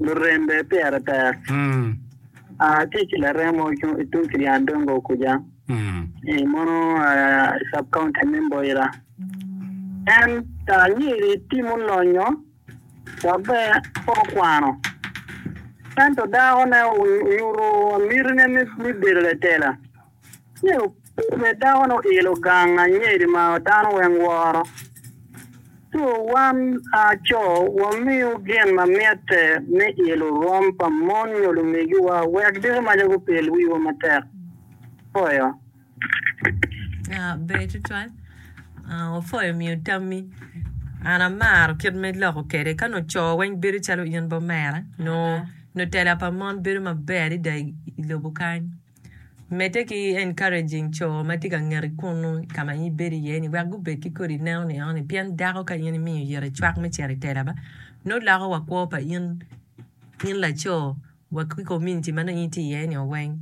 lurembe pyeraber tye ki laremo tung ki Lyandongo kuca, mono sub county me Mboira. En anyiriri timo lonyo dok bene pe okwano ento dakone onyuto mitine me bedo latela. Ci obedo dakono oilo gang anyeri ma dano weng woro, ci wan aco wamiyo gin ma mitte me ilo rwom pa mon nyo lumegiwa wek diko maca gupil wiwa matek. Foyo. Ber tutwal. Wafoyo omiyo tammi. An amaro kit me loko kwede ka nongo co weng bedo calo in bot mere nongo tela pa mon bedo maber adada i lobo kany. Medde ki encouraging co ma tye ka ngeti kunu i ka ma in ibedo iye ni wek gubed ki kodi neno ni eno ni pien dako ka in imiyo yite cwak me cito i tela ba nongo loko wa kwo pa in in laco wa ki community ma nongo in itye iye ni o weng.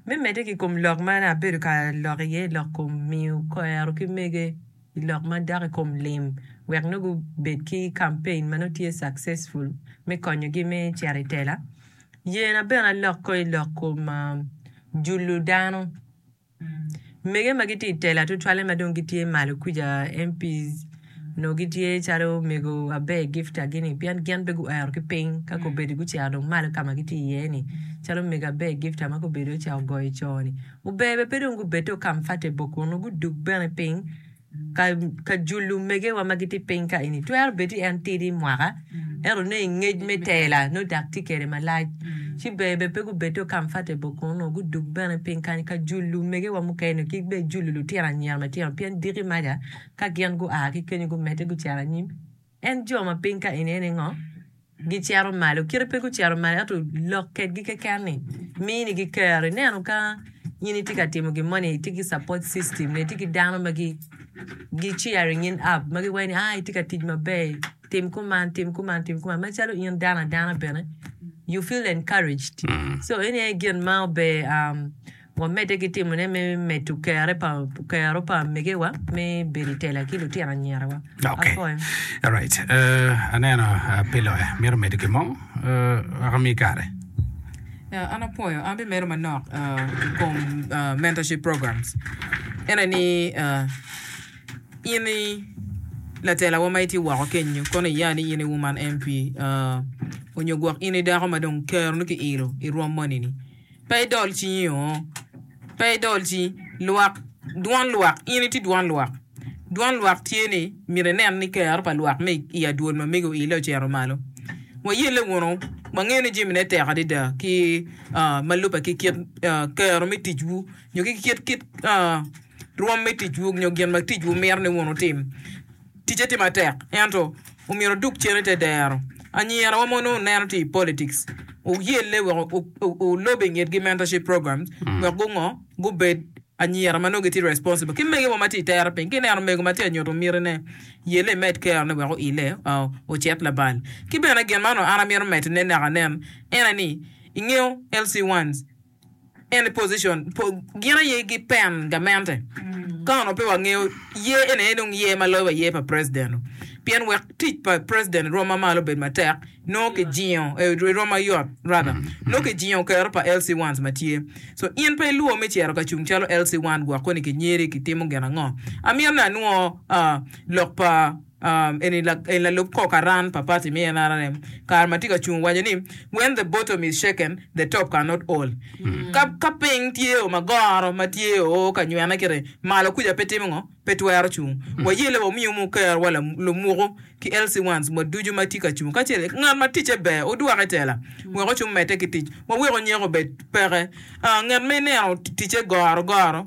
Me medde ki kom lok ma nongo abedo ka lok iye lok kom miyo kwero ki mege i lok ma dok i kom lim wek nongo gubed ki campaign ma nongo tye successful me konyogi me cito i tela. Yena bene aloko i lok kom julu dano. Mege ma gitye i tela tutwalle ma dong gitye malo kuca, MPs, onongo gitye calo omego Aber Gifta gini pien gin pe guero ki piny ka kobedi gucito dong malo ka ma gitye iye ni calo omego Aber Gifta ma kobedi oca ogoyo co-ni. Ober bene pe dong gubed to Kamfate boko nongo gudug bene piny. ka jul lumegewa ma gitye piny ka eni. Twero bed ni en tidi mwaka, ento ne i ngec me tela nongo dak tye kede malac. Ci ber bene pe gubed dong comfortable kunu, gudug bene piny kany ka jul lumegewa mukene nio ki bene jul lutino anyira matino pien diki maca ka gin gua ki kenyo gumedde gucito anyim. En jo ma piny ka eni ningo? Gicito malo. Kite pe gucito malo, ento lok kedgi keken ni mini gi kero. Ineno ka in itye ka timo gin mo ni itye ki support system ne, itye ki dano ma gi gi cheering in up ma giwaco ni aa itye ka tic maber, tim kuman, tim kuman, tim kuman. Macalo in dano adana bene you feel encouraged. So eni aye gin ma ober. Wamedde ki timone me medo kero pa amegiwa me bedo i tela ki lutino anyirawa. Apoi. Aneno pe loya mito medo gin mo, wek omi kare. An apwoyo. An bimedo manok i kom mentorship programs. Ene ni in i latelawa ma itye woko kenyo, kono iya ni in i Woman MP, onyo gwok in i dako ma dong keroni ki ilo i rwom moni-ni, Pe idol cingi oo, pe idol cingi. Lwak, dwon lwak, in itye dwon lwak. Dwon lwak tye ni myero inen ni kero pa lwak me i adwol ma mego oile ocito malo. Wayelle wunu, wangeyo ni jamine tek adada ki ma lubbe ki kit kero me ticwu nyo ki kit rwom me ticwu nyo gin ma ticwu mito ni wun wutim. Ticce tye matek, ento omyero odug cen i te dero. Anyira wa mono oneno tye i politics, oyelle wek olob i ngetgi mentorship programs wek gungo, gubed anyira ma nongo gitye responsible ki mege wa ma tye i tere piny. Ki neno omego ma tye anyutu miti ne, yelle imed kero ne wek oile ocit labal. Ki bene gin ma onongo an amito medo ne naka nen ene ni ingeyo LC ones, Gin aye ki pen gamente ka onongo pe wangeyo yer eni aye dong yer ma loyo wa yer pa president pien wek tic pa president erom ma malo obed matek nongo ki jingo erom mayot rather nongo ki jingo kero pa LC ones ma tye so in pe ilwor me cito ka cung calo LC one gwok koni ki nyeri ki timo gin ango? Amyero ni anwo lok pa Eni lalub kor karan pa party me nrm kare ma tye ka cung waco ni, When the bottom is shaken, the top cannot hold. Ka ka piny tye o ma goro ma tye o ka nywene kiti, malo kuca pe timo ngo? Pe twero cung. Wayelle wa wumi umu kerwa lumuku ki LC ones wa ducu ma tye ka cung kacel ki ngat ma ticce ber odwok itela wek ocung medde ki tic. Wawek onyeko obed peke ngat ma ineno ticce goro goro.